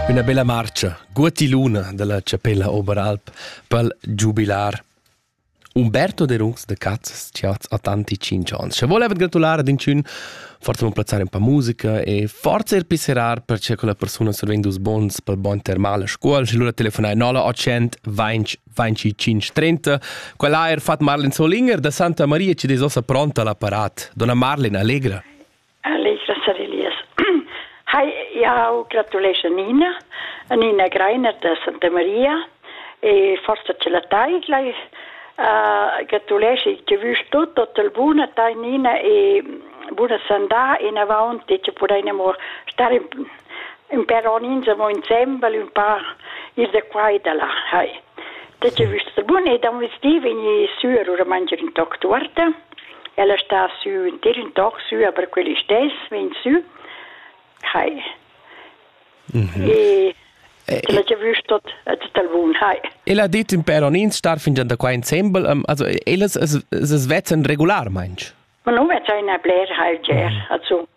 Üna bella marcha, guotti luna dalla Chapella Oberalp pel giubilar. Umberto de Runs de Cazzas ci ha a tanti cinc ans. Ci volevet gratulare ad inchün forza mon plazzare un po' musica e forza ir pisserar per ce che la persona servendo os bons pel bon termal a scuol și lura telefonai 0800 20 25 30 quella ha er fat Marlin Solinger da Santa Maria ci desossa pronta l'apparat donna Marlin allegra Leila Savelius. Hi, jau gratulesch a Nina, a Nina Greiner da Santa Maria e forza ce la taidla. Uh, gratulesch che vus tut tot il bun a tai Nina e buna sandà in avanti che potremmo stare in, in per insomma insieme un po' ir da qua e da là. Hi. Te ce vus bun e da un vestiv in su a mangiare in toc tuorta. El è sta sü ün tir ün toc sü, aber quel istess vegn sü. Hai. Mhm. E Ella che vist tot tot al bun, hai. El ha dit in peronins star fingian da qua insembel, um, also ellas es es vezzan regularmaing. Ma nu vezza ina bler hal ger, also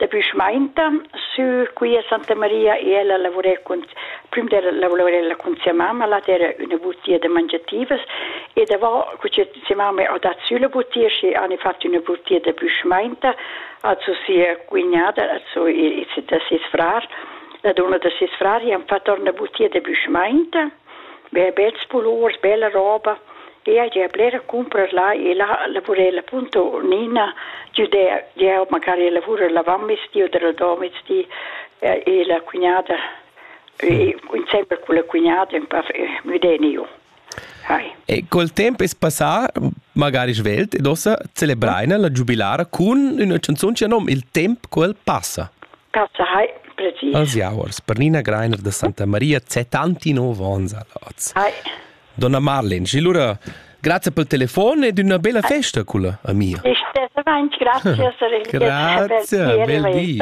Dapi schmaintan sü quia Santa Maria e ella lavurer cun prüm d'ella lavurer ella cun sia mamma, là d'eira üna butia da mangiativas e davo cu sia mamma ho dat sü la butia, schi hani fat üna butia da büschmainta, also sia cugnada, also da ses frar. La duonna da ses frar hi han fat or 'na butia da büschmainta Berbets pulurs, bella roba, ella gia blera cumpras là e là lavura ella punto Nina giu der. Jeu magari lavura la vammezdi oder la domezdi e e la cugnada e insembel con la cugnada un pa müdeniu. Hai. E col tempo es passà magari svelt ed ossa celebreina la giubilara cun üna canzun che nom Il temp quel passa. Als jauers per Nina Greiner da Santa Maria tanti nov ons a Laz. Donna Marlin, și lura grazie pel telefon ed una bella festa culla amica. Grazie, bel di.